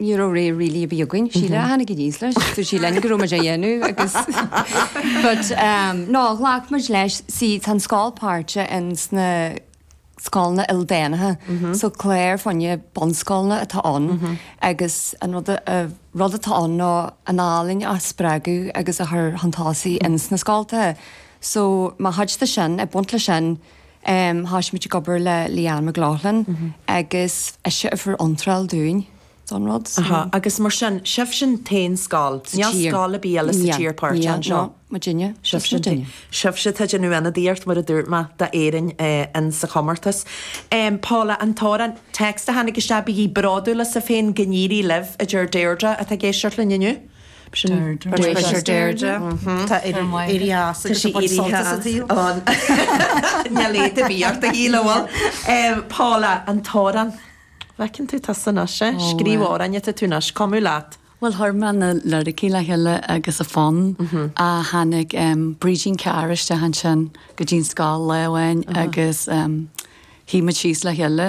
ní raibh rogha really a bhí againn, Síle a tháinig aníos leis, dúirt sí linn go raibh muid á dhéanamh agus but um no ghlac muid leis, see tá an scoil páirteach in sna scoileanna ildánacha so clár fá choinne bunscoileanna atá ann agus an rud a rud atá ann ná an ealaín a spreagadh agus a chur chun tosaigh in sna scoltacha so mar chuid de sin, ag baint leis sin, Thosaigh muid ag obair le Leanne McLaughlin agus ise a fuair iontráil dúinn don rud so. Agus mar sin, sibhse an t-aon scoil, níl scoil ar bith eile sa tír páirteach anseo? Níl, níl, muidinne, sibhse muidinne. Sibhse atá ag déanamh ionadaíocht, mar a dúirt mé, d'Éirinn sa chomórtas. Paula, an t-amhrán, text a tháinig isteach, Bígí bródúil asaibh féin, go n-éirí libh, a deir Deirdre atá ag éisteacht linn inniu. B'shin B'shin Deirdre. Tá éirí as agus tá éirí as an taobh. Níl éad ar bith ort a Shíle, bhfuil? Paula, an t-amhrán, bhfeiceann tú tusa anois é, scríobh amhráin atá tú anois, ag cumadh leat. Bhuel, chuir mé na liricí le chéile agus an fonn ach tháinig Brídín Carr isteach ansin go dtí'n scoil lá amháin agus shuigh muid síos le chéile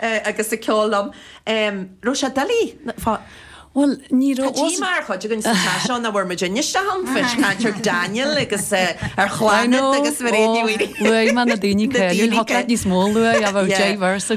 agus ag ceol liom. raibh sé doiligh fá bhfuil ní raibh go dtí mar chuid againn sa teach seo ná bhfuair muid anois a thángthas caint ar Daniel agus ar Chlannad agus Mairéad Ní Mhaonaigh luaigh mé na daoine caola níos mó luaigh a bheith diverse